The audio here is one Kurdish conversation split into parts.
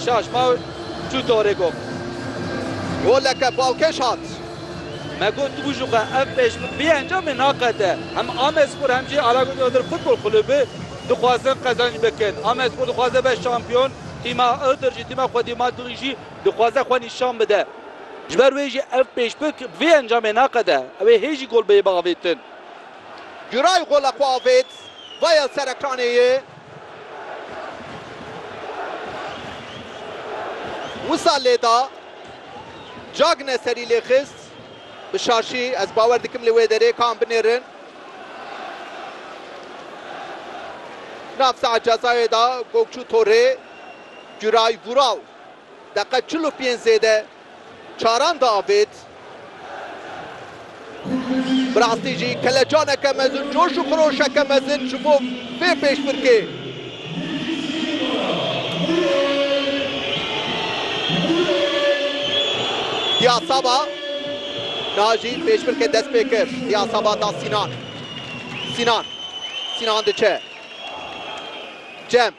Şaş ma çû torê gom. Goleke balkêş hat. Me got tu bû jûxe ev pêşbik vê encamê naqete. Hem Amedspor hem jî Alagöz Iğdır Futbol Kulübü dixwazin qezanc bikin. Amedspor dixwaze be şampiyon, tîma Iğdır jî, tîma xwedî Madrid jî dixwaze xwe nîşan bide. Ji ber wê jî ev pêşbik vê encamê naqete. Ew ê hê jî gol bê biavêtin. Güray gola xwe avêt, Vael Serekranê ye Wisa lêda. Cagne serî lê xist. Bi şaşî ez bawer dikim li wê derê ka em binêrin. Nav saet cezayê da Gokçû Torê. Güray Vural deqa çil û pênc zêde Çaran diavêt. Bi rastî jî kelecaneke mezin, coş û xiroşeke mezin ji bo vê pêşbirkê. Diyasaba, niha jî pêşbirkê dest pê kir. Diyasaba da Sînan. Sînan. Sînan diçe. Cem.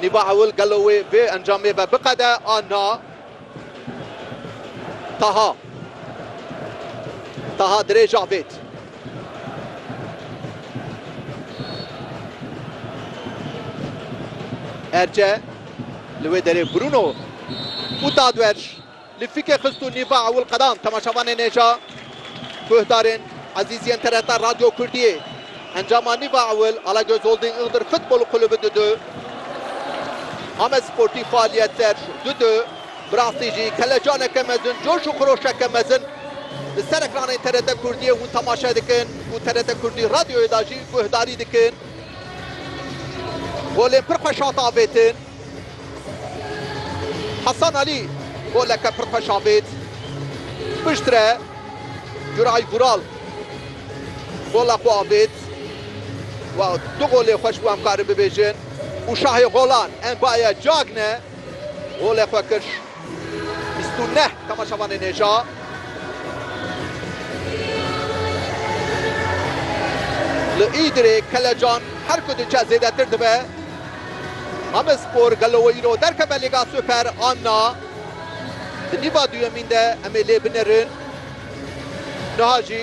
Nîva Hewil gelo wê vê encamê ve biqede a na? Taha Taha Dirê Javêd Erce li wê derê Bruno û Tadwerj Li fike xist û nîva ewil qedand. Temaşevanên hêja guhdarên ezîz yên TRT Radyo Kurdiyê, encama nîva ewil Alagöz Holding Iğdır Futbolu Kulübü du du, Amed Sportî Faaliyet Serj du du, bi rastî jî kelecaneke mezin, coş û xiroşeke mezin li ser ekranên TRT Kurdiyê hûn temaşe dikin û TRT Kurdî Radyoyê de jî guhdarî dikin. Golên pir xweş hat avêtin. Hasan Alî goleke pir xweş avêt. Piştre Guray Vural gola xwe avêt û du golê xweş bû em karin bibêjin û şahê golan Mbaye Cagne golê xwe kir. Bîst û neh temaşevanên hêja. Li Îdirê kelecan her ku diçe zêdetir dibe. Amedspor gelo wê îro derkeve Lîga Super an na? Di nîva duyemîn de em ê lê binerin. Niha jî.